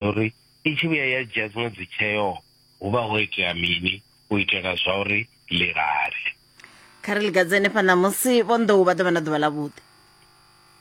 uri i tshi vhuya ya dzhia dziṅwe dzi tsheo hu vha ho itea mini u itela zwa uri ḽi lale kha ri ligadze henefha ṋamusi vho nḓou vha ḓovha na ḓuvha ḽa vhuḓi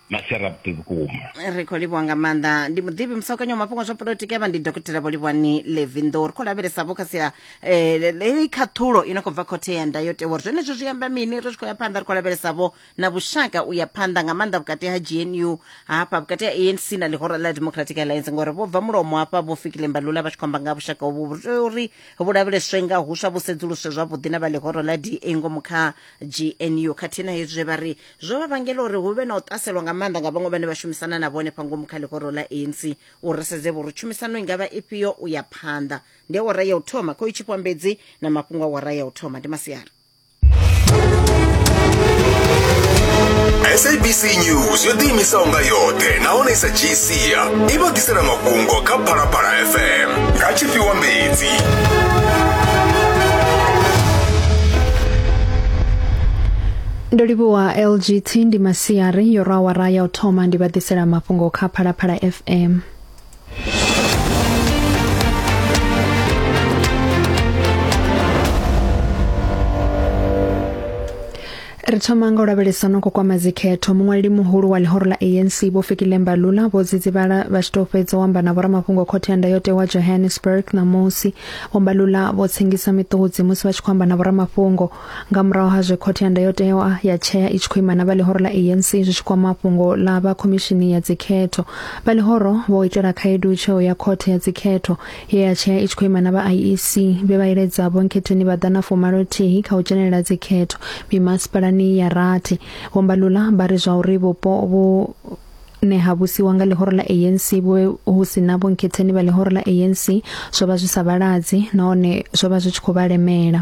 masera vhuḓi vhukuma ri khou livhuwa nga maanḓa ndi muḓivhi musakanyo wa mafhungo zwa polotiki avha ndi dokotela vho livhuwani levindo ri khou lavhelesa vho kha sia um khaṱhulo i no khou bva khothe ya ndayotewa uri zwenezwo zwi amba mini ri tshi khou ya phanḓa ri khou lavhelesa vho na vhushaka u ya phanḓa nga maanḓa vhukati ha gnu hafha vhukati ha anc na ḽihoro ḽa democratic alliance ngori vho bva mulomo hafha vho fikile mbalula vha tshi khou amba nga vhushaka hovhu vhu tea uri vhu lavheleswe nga huswa vhu sedzuluswe zwavhuḓi na vha ḽihoro ḽa da ngomu kha gnu khathihi na hezwi zwe vha ri zwo vha vhangela uri hu vhe na u ṱaselwa nga maanḓa nga vhaṅwe vhane vha shumisana na vhone fha ngomu kha ḽihoro ḽa anc u ri sedze vho ri tshumisano i nga vha ifhio u ya phanḓa ndi awara ya u thoma khou i tshipwambedzi na mafhungo awara ya u thoma ndi masiari sabc news yo ḓiimisaho nga yoṱhe nahone sa gca i vha ḓisela mafhungo kha phalaphala fm nga tshifhiwa mbedzi ndo livhuwa lgt ndi masiari yo rwa awara ya u thoma ndi vha ḓisela mafhungo kha phalaphala fm ri thoma nga u lavhelesa no ko kwama dzikhetho muṅwaleli muhulu wa ḽihoro ḽa anc vho fikile mbalula vho dzidzivhala vha tshi tou fhedza u amba na vhoramafhungo khothe ya ndayotewa johannesburg ṋamusi vho mbalula vho tsengisa miṱudzi musi vha tshi khou amba na vhoramafhungo nga murahu ha zwe khothe ya ndayotewa ya tshea i tshi khou ima na vha ḽihoro ḽa anc zwi tshi kwama fhungo ḽa vha khomishini ya dzikhetho vha ḽihoro vho itela khaedu tsheo ya khothe ya dzikhetho ye ya tshea i tshi khou ima na vha iec vhe vha iledza vhonkhetheni vha ḓa na fumalothihi kha u dzhenelela dzikhetho mimasipalani ya rathi vhombalula vha ri zwa uri vhupo vhu ne ha vhusiwa nga ḽihoro ḽa ANC vho hu si na vhonkhetheni vha ḽihoro ḽa ANC zwo vha zwi sa vhaladzi nahone zwo vha zwi tshi khou vha lemela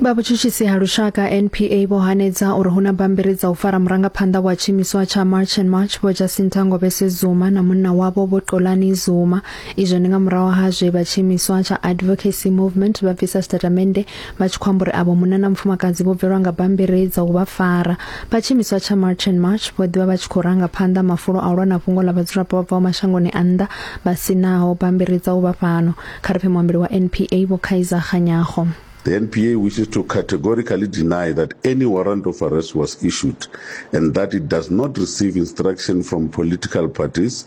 vha vhutshutshisi ha lushaka NPA vho hanedza uri huna bambiri dza u fara murangaphanḓa wa tshimiswa tsha March and March vho Jacinta Ngobese Zuma na munna wavho vho Xolani Zuma izwo ndi nga murahu ha zwe vha tshimiswa tsha Advocacy Movement vha bvisa statamende vha tshi khou amba uri avho munna na mufumakadzi vho bvelwa nga bammbiri dza u vha fara vha tshiimiswa tsha march and march vho ḓivha vha tshi khou ranga phanḓa mafulo a u lwa na fhungo ḽa vhadzulapo vha bvaho mashangoni a nnḓa vha si naho bammbiri dza u vha fhano kha ri pfe muambeli wa npa vho khaiza ganyago The NPA wishes to categorically deny that any warrant of arrest was issued and that it does not receive instruction from political parties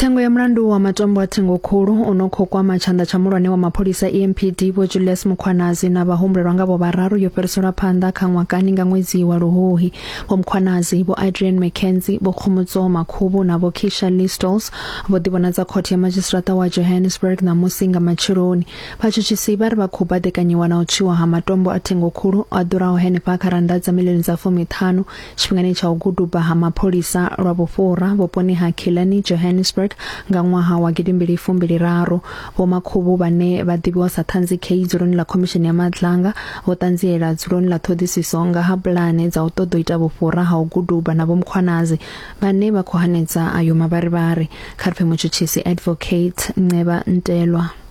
tsengo ya mulandu wa matombo a thengo khulu u no khou kwama tshanḓa tsha mulwane wa mapholisa empd vho julius mukhwanazi na vhahumbulelwa nga vho vhararu yo fhiriselwa phanḓa kha ṅwakani nga ṅwedzi wa luhuhi vho mukhwanazi vho adrian mckenzie vho khomotso makhubu na vho kisha listols vho ḓivhonadza khothe ya madzhisiṱiraṱa wa johannesburg ṋamusi nga matsheloni vhatshutshisi vha ri vha khou baḓekanyiwa na u tswiwa ha matombo a thengo khulu a ḓuraho henefha kha rannda dza milioni dza fumiṱhanu Tshifhingani tsha u guduba ha mapholisa lwa vhufhura vhuponi ha Killarney, Johannesburg nga ṅwaha wa gidimbili fumbili raru, Vho Makhubu vhane vha ḓivhiwa sa Ṱhanzi Kay dzuloni ḽa Khomishini ya Matlanga vho ṱanziela dzuloni ḽa ṱhoḓisiso nga ha pulane dza u ṱoḓa u ita vhufhura ha u guduba na Vho Mkhwanazi vhane vha khou hanedza ayo mavharivhari. Kha ri pfe mutshutshisi Advocate Nceba Ntelwa.